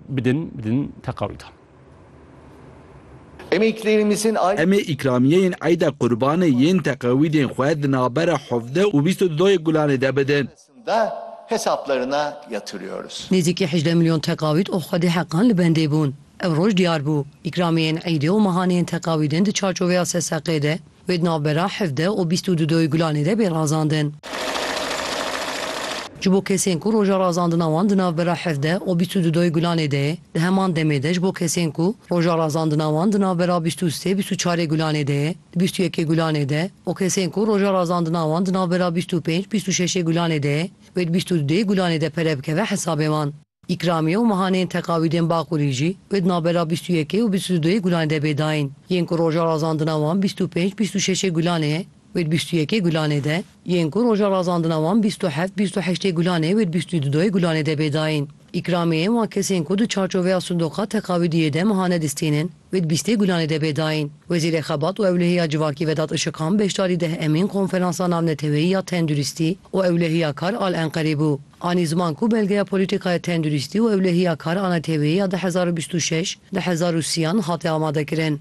bidin bidin teqawîdan. Em ê îkrêmîsên ay. Em ê îkramiyeyên eyda qurbanê yên teqawîdên xwe di navbera hevdeh û bîst û du yê gulanê de bidin. Sında hesaplarına yatırıyoruz. Nêzîkî hejdeh milyon teqawîd û xwedî heqan li bendê bûn. Ew roj diyar bû, îkramiyeyên eydê û mehaneyên teqawîdên di çarçoveya seseqê de Wê di navbera hevdeh û bîst û du doyê Gulanê de bê razandin. Ji bo kesên ku roja razandina wan di navbera hevdeh û bîst û du doyê Gulanê de ye, di heman demê de ji bo kesên ku roja razandina wan di navbera bîst û sê bîst û çarê Gulanê de ye, di bîst û yekê Gulanê de û kesên ku roja razandina wan di navbera bîst û pênc bîst û şeşê Gulanê de ye, wê di bîst û du dê Gulanê de pere bikeve hesabê wan. Îkramiye û mehaneyên teqawîdên Baqûrî jî wê di navbera bîst û yekê û bîst û dudoyê Gulanê de bê dayîn. Yên ku roja razandina wan bîst û pênc, bîst û şeşê Gulanê ye, wê di bîst û yekê Gulanê de, yên ku roja razandina wan bîst û heft, bîst û heştê Gulanê ye wê di bîst û dudoyê Gulanê de bê dayîn. Îkramiyeyên wan kesên ku di çarçoveya sindoqa teqawîdiyê de mehane distînin, Wê di bîstê Gulanê de bê dayîn. Wezîrê Xebat û Ewlehiya Civakî Vedat Işiqan beşdarî deh emîn Konferansa Navneteweyî ya Tenduristî û Ewlehiya Kar al Enqerê bû. Anî ziman ku Belgeya Polîtîkaya Tenduristî û Ewlehiya Kar a Neteweyê ya du hezar û bîst û şeş, du hezar û sî yan hate amadekirin.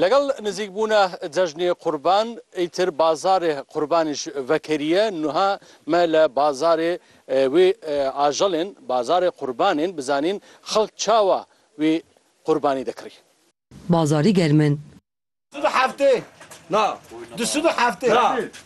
Legal nizîkbûna cejnê qurban îtir bazarê qurbanê ji vekeriye nuha me le bazarê wê ajalên bazarê qurbanên bizanîn xelk çawa wê qurbanî dikirîn. Bazarî germ in. Sibi heftê na. Du sibi heftê.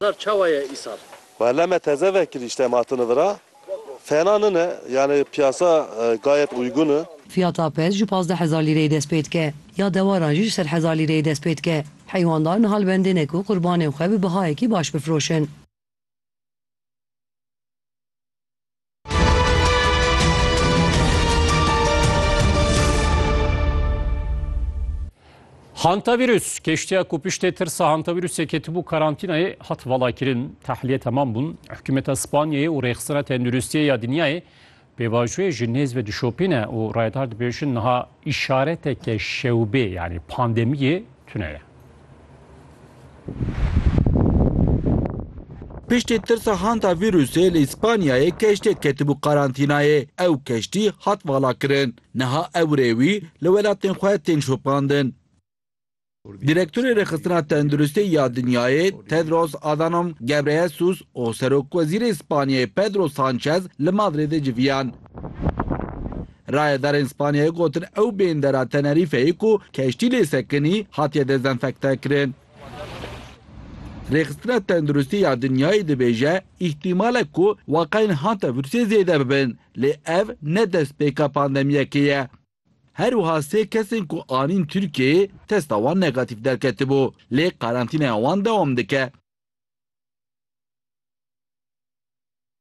Îsar çawa ye îsar? Wele me teze vekirî îşte em hatine vira. Fena nine yanî piyasa gayet uygun i. Fiyata pez ji pazdeh hezar lîreyê dest pê dike. Ya dewaran jî ji sed hezar lîreyê dest pê dike. Heywandar niha li bendê ne ku qurbanên xwe bi bihayekî baş bifiroşin. Hantavîrus keştiya ku piştê tirsa hantavîrusê ketibû karantînayê hat valakirin. Tehliyê temam bûn. Hikûmeta Spanyayê û Rêxistina Tenduristiyê ya Dinyayê pêvajoyê ji nêz ve dişopîne û rayeddar dibêjin niha îşareteke şewbê yanî pandemiyê tune ye. Piştî tirsa hanta vîrusê li Îspanyayê keştiyek ketibû qarantînayê. Ew keştî hat valakirin. Niha ew rê wî li welatên xwe tên şopandin. Direktorê Rêxistina Tenduristê ya Dinyayê Tedros Adhanom Ghebreyesus û Serokwezîrê Îspanyayê Pedro Sanchez li Madrîdê civiyan. Rayedarên Spanyayê gotin ew bêndera Tenerîfeyê ku keştî lê sekinî hatiye dezenfektekirin. Rêxistina Tenduristî ya Dinyayê dibêje îhtîmal e ku weqayên hanta vîrusê zêde bibin, lê ev ne destpêka pandemiyekê ye. Her wiha sê kesên ku anîn Tirkiyeyê testa wan negatîf derketibû, lê karantînaya wan dewam dike.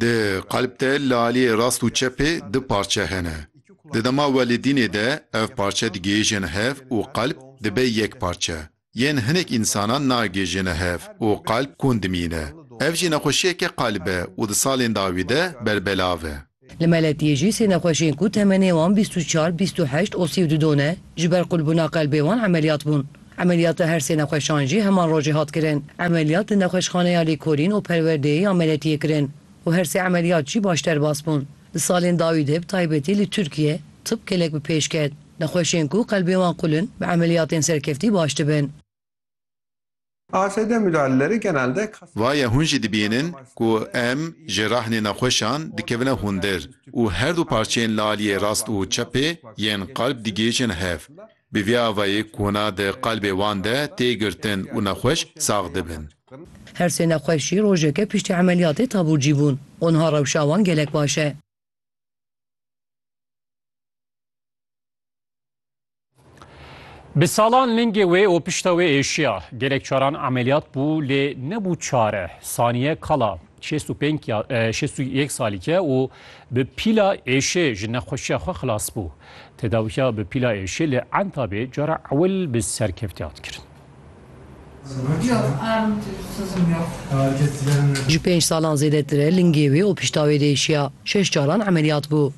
Di qalb de li aliyê rast û çepê du parçe hene. Di dema welidînê de ev parçe digihêjin hev û qalb dibe yek parçe. Yên hinek însanan nagihêjine hev û qalb kûn dimîne. Ev jî nexweşiyeke qalb e û di salên dawî de berbelav e. Li meletiyê jî sê nexweşiyên ku temenê wan bîst û çar, bîst û heşt û sî û du don e, ji ber qulbûna qelbê wan emeliyat bûn. Emeliyata her sê nexweşan jî heman rojê hat kirin. Emeliyat li Nexweşxaneya Lêkolîn û Perwerdeyê ya Meletiyê kirin û her sê emeliyat jî baş derbas bûn. Di salên dawî de bi taybetî li Tirkiye tib gelek bi pêş ket. Nexweşên ku qelbên wan qul in bi emeliyatên serkeftî baş dibin. ASD müdahaleleri genelde kas. Vaye hûn jî dibînin ku em ji rehnê nexweşan dikevine hundir û her du parçeyên li aliyê rast û çepê yên qalb digihêjin hev. Bi vî avayî kona di qalbê wan de tê girtin û nexweş sax dibin. Her sê nexweş jî rojeke piştî emeliyatê taburcî bûn û niha rewşa wan gelek baş e. Bi salan lingê wê û pişta wê êşiya. Gelek caran emeliyat bû lê nebû çare. Saniye Kala, Şêst û pênc ya şêst û yek salîk e û bi pîla êşê ji nexweşiya xwe xilas bû. Tedawiya bi pîla êşê li Entabê cara ewil bi serkevtî hat kirin. Ji pênc salan zêdetir e lingê wê opîştawê de êşiya. Şeş caran emeliyat bû.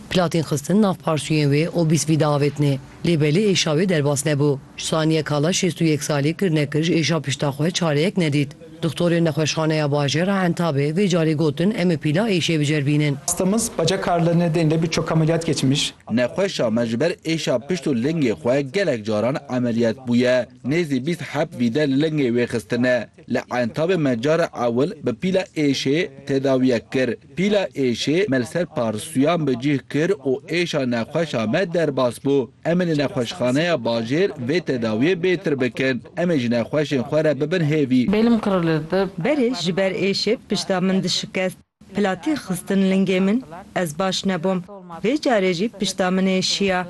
Platên xistin nav parsûyên wê û bîst vî diavêtinê. Lê belê êşa wê derbas nebû. Ji saniye kala şêst û yek salî kir nekir ji êşa pişta xwe çareyek nedît. Dixtorên nexweşxaneya bajêr a Entabê vê carê gotin em ê pîla êşê biceribînin. Hastamız baca karlarını denile birçok ameliyat geçmiş. Nexweşa me ji ber êşa pişt û lingê xwe gelek caran emeliyat bûye. Nêzî bîst heb vîde li lingê wê xistine. Li Entabê me cara ewil bi pîla êşê tedawiyek kir. Pîla êşê me li ser parsuyan bi cih kir û êşa nexweşa me derbas bû. Em ê li nexweşxaneya bajêr vê tedawiyê bêtir bikin. Em ê ji nexweşên xwe re bibin hêvî. Belim kırılırdı. Berê ji ber êşê pişta min dişikest. Platî xistin lingê min. Ez baş nebûm. Vê carê jî pişta min êşiya.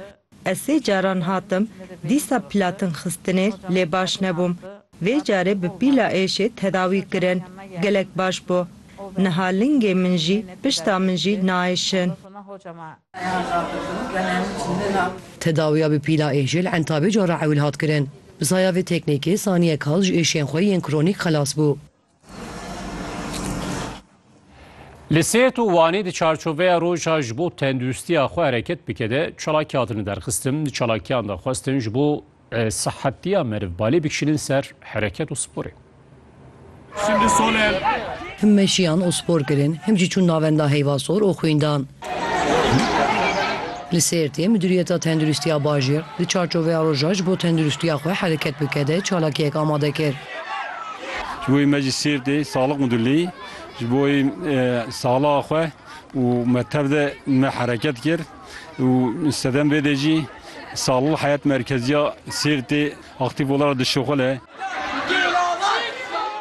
Ez sê caran hatim, dîsa platin xistinê lê baş nebûm. Vê carê bi pîla êşê tedawî kirin, gelek baş bû. Niha lingê min jî, pişta min jî naêşin. Tedawiya bi pîla êşê li Entabê cara ewil hat kirin. Bi saya vê teknîkê saniyek kal ji êşên xwe yên kronîk xelas bû. Li Sêrt û Wanê di çarçoveya roja ji bo tenduristiya xwe hereket bike de çalakî hatine derxistin. Di çalakiyan de xwestin ji bo e, sihetiya meriv balê bikişînin ser hereket û sporê. Him meşiyan û spor kirin, him jî çûn navenda heyvasor û xwîndan. Li Sêrtê Midûriyeta Tenduristiya Bajêr di çarçoveya roja ji bo tenduristiya xwe hereket bike de çalakiyek amade kir. Ji bo me ji Sêrtê Saxlîk Midûrlî ji bo saxlixa xwe û me tev de me hereket kir û sedem vê de jî Saxlîk Heyet Merkeziya Sêrtê, Aktîf olarak dişuxile.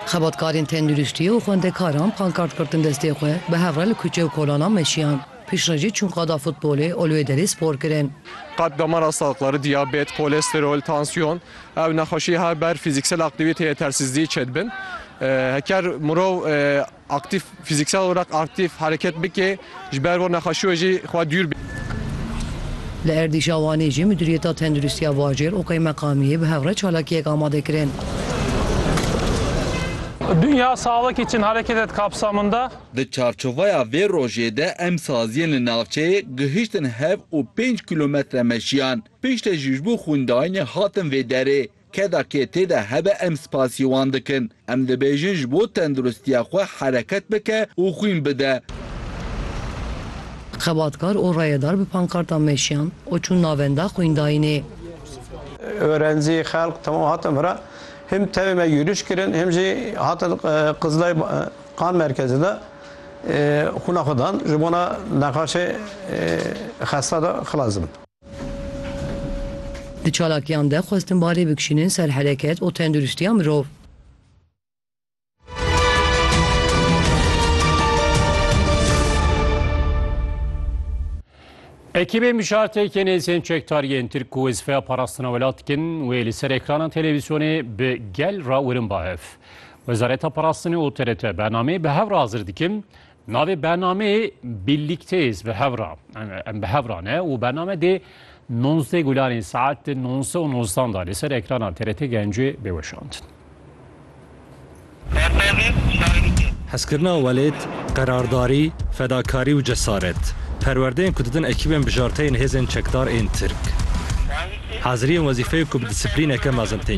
Xebatkarên tenduristiyê û xwendekaran pankart girtin destê xwe bi hev re li kuçe û kolanan meşiyan. Piştrecî çûn qada futbolê û li wê derê spor kirin. Qad damara saqlari, diyabet, kolesterol, tansiyon ew nexweşiyê her ber fîzîksel aktîvîteyê yetersîzdiyê çedibin. Heker mirov. Aktîf, Fîzîksel olarak aktîf, hereket bike, ji ber vê nexweşiyê jî xwe dûr bike. Li êrîşa Wanê jî Mudîriyeta Tenduristiya Bajêr û Qeymeqamiyê bi hev re çalakiyek amade kirin. Dinya sağlık için hareket et kapsamında. Di çarçovaya vê rojê de em saziyên li navçeyê gihiştin hev û pênc kîlometre meşiyan. Piştre jî ji bo xwîndaînê hatin vê derê. Keda kê tê de hebe em spasî wan dikin. Em dibêjin ji bo tenduristiya xwe hereket bike û xwîn bide. Xebatkar û rayedar bi pankartan meşiyan û çûn navenda xwîndayînê. Orencî, xelk temam hatin vira. Him tevê me yûriş kirin him jî hatin Qizilay Qan Merkezê de xwîna xwe dan ji bona nexaşê xesta de xilas dibin. Di çalakiyan de xwestin balê bikişînin ser hereket û tenduristiya mirov. Ekîbê mijartêkê nêzên çekdariyên Tirk ku wezîfeya parastina welat dikin wê li ser ekranan televîzyonê bi gel re wirin ba hev. Wezareta Parastinê û TRT bernameyê bi hev re hazir dikin, Navê bernameyê Birlikteyiz bi hev re em bi hev re ne û bername dê nonzdeh gulanên saet di nonse û nozdan da li ser ekrana TRT Gencê bê weşandin. Hezkirina welêt, qerardarî, fedakarî û cesaret, perwerdeyên ku didin ekîbên bijarteyên hêzên çekdar ên Tirk. Haziriyên wezîfeyê ku bi disiplîneke mezin tên